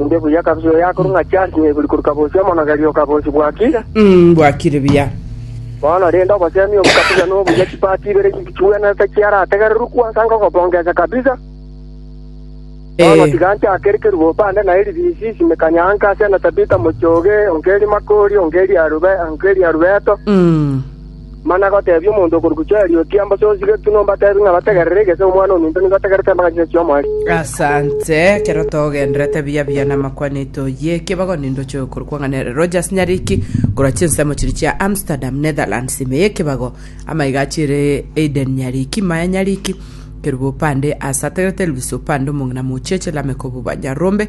Inde buya kabisa oyo akorwa ng'a Charles Nyeburi korwa Kabosi, omonogeria o Kabosi bwakire. Mm, bwakire buya. Bono rende obosemi obo kabisa nobuya chipati ibere chiwenerete chiarategererwa kwansa ngogobongesa kabisa. Bono Eh. tiga nchakere kerube opande na eribisi simekanya anka ase na Tabitha Mochoge, onke eri Makori, onke eri Arube, onke eri Arubeto. Mm. Mana goteebia omonto okorokigwa Joeli, Ambosie osigetwe nombateebie ng'a bategerere, egese Omwana ominto nigo ategerete amang'ana chionsi chi'Omoerio. Asante, ekero togenderete buya buya namakwanete oyie, ekebago nindoche oyokorokwa ng'a nere Rogers Nyariki, korwa chinsemo chiria chia Amsterdam, Netherlands, ime y'ekebago, amaiga achiire Aiden Nyariki, Maya Nyariki, Kerubo opande, Asa ategerete Elvis opande, omong'ina mocheche, Lameck obo Banyarombe,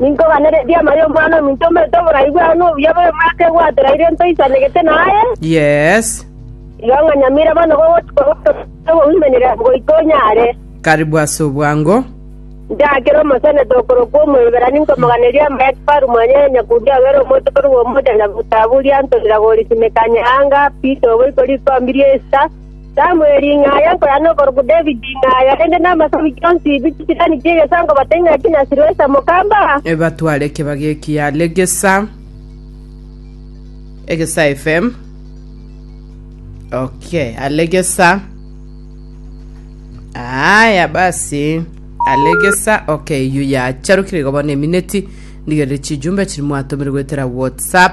Ninkobanererie amaya Omwana-o-minto omete oborai bwao nobuya bobe bwake gwatera ere ntoisanegete naye. Yes. Igo ng'a nyamira bono gogochika ogotogia oboimenera goika onyare. Karibu ase obwango. Njakere omoseneta okorokwa Omoiberani nkomoganerie amaya kifaru mwanyaye Onyakuria obere omonto korwa omochanya gotaburia antorera gori simekania anga, Pito oboiko rikombi ri'esita, Samueli ng'a aye nkoya nokorokwa David ng'a aye, korende namasabwi onsi bi chisirani chi'egesango bate ng'a ki na Siroesa mokamba. Ebatware ekebagi eki yare gesa egesa FM. Okay, are gesa. Aya basi. Are gesa. Okay, yu yacharukire igo bono emineti ndigerire chijumbe chiri mwatomire goetera WhatsApp.